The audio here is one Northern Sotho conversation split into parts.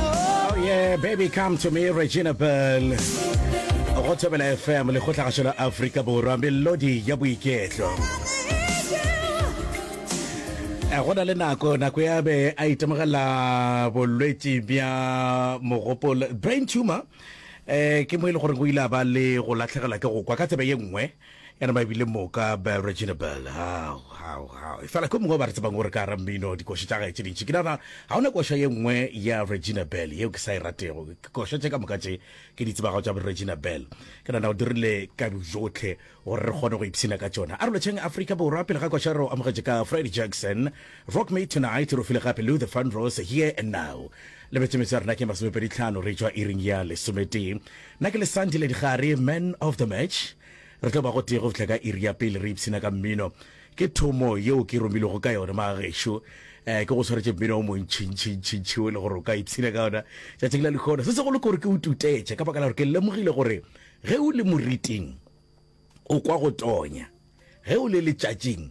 Oh yeah, baby come to me, Regina Bell. Go thobela FM le go tlhagašo la Afrika Borwa, melodi ya boiketlo. Eh, go na le nako nako ya be a itemogela bolwetši bja mogopolo brain tumor eh ke mo e le gore go ile a ba le go latlhegelwa ke go kwa ka tsebe ye nngwe ya nama ebile moka bel regina bel fela ko mongwe ba re tsebang gore ka ra mmino dikoša tša gae tše dintši ke nana ga ona koša ye nngwe ya regina bel yeo ke sa e ratego koša tše ka moka tše ke di tsebago tša regina bel ke nana o dirile ka bojotlhe gore re kgone go ipshina ka tšona a re lotšheng afrika borwa pele ga koša re o amogetše ka freddy jackson rock me tonight re file gape lou the fun rose here and now lebetse metse ya rena ke masomepedi tlhano re tšwa iring ya lesometee Nna ke le Sandile Digare, Man of the Match. Re tlo ba gotee go fihla ka iri ya pele re ipshina ka mmino. Ke thomo yeo ke romilwego ka yona, magešo. Eh, ke go swaretše mmino o montšintšintšintši o e le gore o ka ipshina ka ona tšatšing la lehono. Se segolo ke gore ke o tutetše ka baka la gore ke lemogile gore ge o le moriting o kwa go tonya, ge o le letšatšing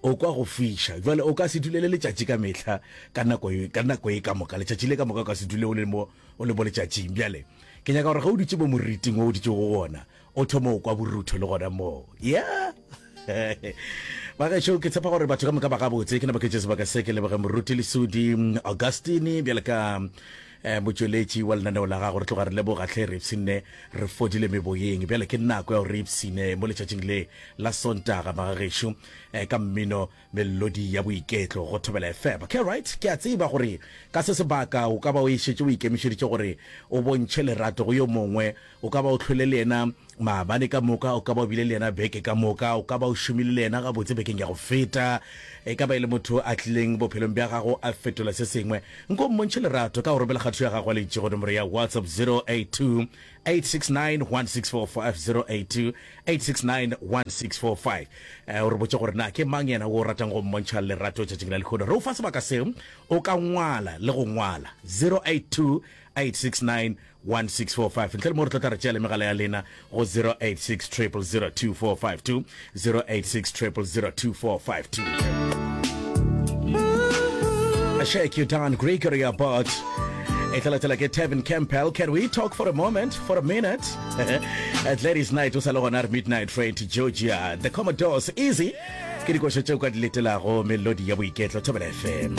O kwa go fiša. Jwale, o ka se dule le letšatši ka mehla, ka nako, ka nako ye ka moka, letšatši le ka moka o ka se dule o le mo, o le mo letšatšing. Bjale, ke nyaka gore ge o dutše mo moriting wo o dutšego go wona, o thome go kwa borutho le gona moo. Yeah! Bagešo, ke tshepa gore batho ka moka ba gabotse. Ke napa ke tšee sebaka se ke leboge Moruti Lesudi Augustine, bjale ka. Eh, motšweletši wa lenaneo la gago re tloga re leboga tlhe re ipshinne re fodile meboyeng bjale ke nako ya gore re ipshine mo letšatšing le la sontaga magagešo um eh, ka mmino melodi ya boiketlo go thobela efeba ke right ke a tseba gore ka se sebaka o ka ba o ešetše o ikemišeditše gore o bontšhe lerato go yo mongwe O ka ba o hlwele le yena maabane ka moka, o ka ba o bile le yena beke ka moka, o ka ba o šomile le yena gabotse bekeng ya go feta. E ka ba e le motho a tlileng bophelong bja gago a fetola se sengwe. Nko mmontšhe lerato ka go romela kgato ya gago ya leitšigo nomoro ya WhatsApp 082 869 1645, 082 869 1645. O re botše gore na ke mang yena wo o ratang go mmontšha lerato tšatšing la lehono. Re o fa sebaka seo o ka ngwala le go ngwala, 082 869 1645 ntle le moo re tlo tla re tšeele megala ya lena go 0860002452 0860002452 Shake you down Gregory Abbott e tla latela ke Tevin Campbell can we talk for a moment for a minute at ladies night o sa le gona re midnight train to Georgia the Commodores easy ke dikošo tšeo ka di letelago melodi ya boiketlo thobela fm